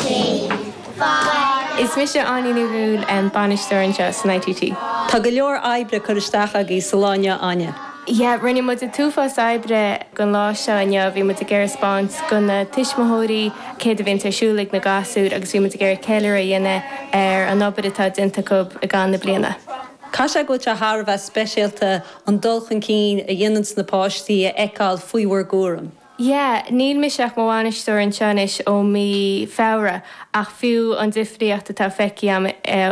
Cén fáth? Is mise Áine Ní Dhúill, bainisteoir anseo san ITT. Tá go leor oibre curtha isteach agaí sa lá inniu Áine. Yeah, rinne muid an t-uafás oibre gon lá seo inniu, bhí muid ag iarraidh spáint go na tuismitheoirí céard a bhíonns ar siúl ag na gasúir agus bhí muid ag iarraidh ceiliúradh a dhéanamh ar an obair atá déanta acu i gcaitheamh na bliana. Caithfidh sé go bhfuil sé thar a bheith speisialta an dul chun cinn a dhéananns na páistí a fheiceáil faoi bhur gcúram. Yeah, níl mise ach mo bhainisteoir anseo anois ó mí Feabhra ach fiú an difríocht atá feicthe agam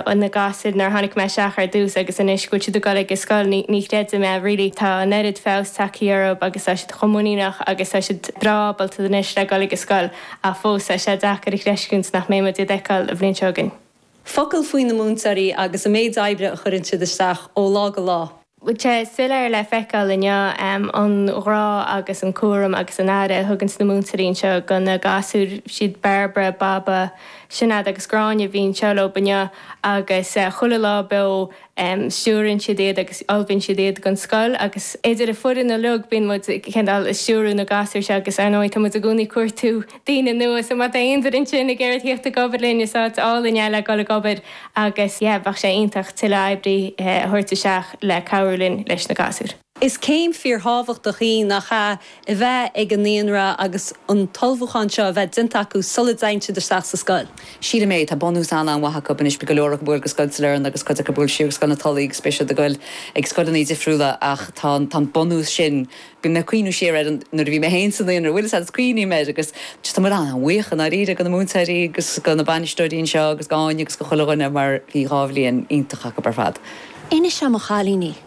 ó na gasúir nuair a tháinig mé isteach ar dtús agus anois go bhfuil siad ag dul ag an scoil, ní, ní chreidim é really. Tá an oiread feabhas tagtha orthub agus tá siad chomh muiníneach agus tá siad breá ábalta anois le dhul ag an scoil ach fós tá sé deacair a chreistiúint nach mbeidh muid iad fheiceáil an bhliain seo chugainn. Focal faoi na múinteoirí agus an méid oibre a chuireann siad isteach ó lá go lá. Bhí sé soiléir le feiceáil inniu an grá agus an cúram agus an aire a thuganns na múinteoirí anseo go na gasúir. Siad Bairbre, Baba, Sinéad agus Gráinne a bhí anseo leob inniu agus chuile lá beo. stiúrann siad iad agus ullmhaíonn siad iad gon scoil agus idir an foireann uiliog bíonn muid cineál ag stiúradh na gasúir seo agus ar ndóigh tá muid i gcónaí ag cuartú daoine nua so má tá aon duine ansin ag iarraidh theacht ag obair linn is áit álainn é le dhul ag obair agus yeah bheadh sé iontach tuilleadh oibrithe a thabhairt isteach le cabhrú linn leis na gasúir. Is céim fíorthábhachtach í nach ea, a bheith ag an naíonra agus an t-ullmhúchán seo a bheith déanta acu sula dteigheann siad isteach sa scoil. Sílim é, tá bunús an-an-mhaith acu anois, beidh go leor acu ag dul go Scoil Sailearna agus cuid acu ag dul siar go Scoil na Tulaí agus beidh siad ag dul ag scoileanna difriúla ach tá an bunús sin, bíonn mé ag cuimhneamh siar ar nuair a bhí mé féin sa naíonra, bhuel is fad is cuimhním air agus just tá muid an-bhuíoch i ndáiríre go na múinteoirí agus go na bainisteoirí anseo agus go Áine agus go chuile dhuine mar bhí dhá bhliain iontach acu ar fad. Inis dhom a chailíní!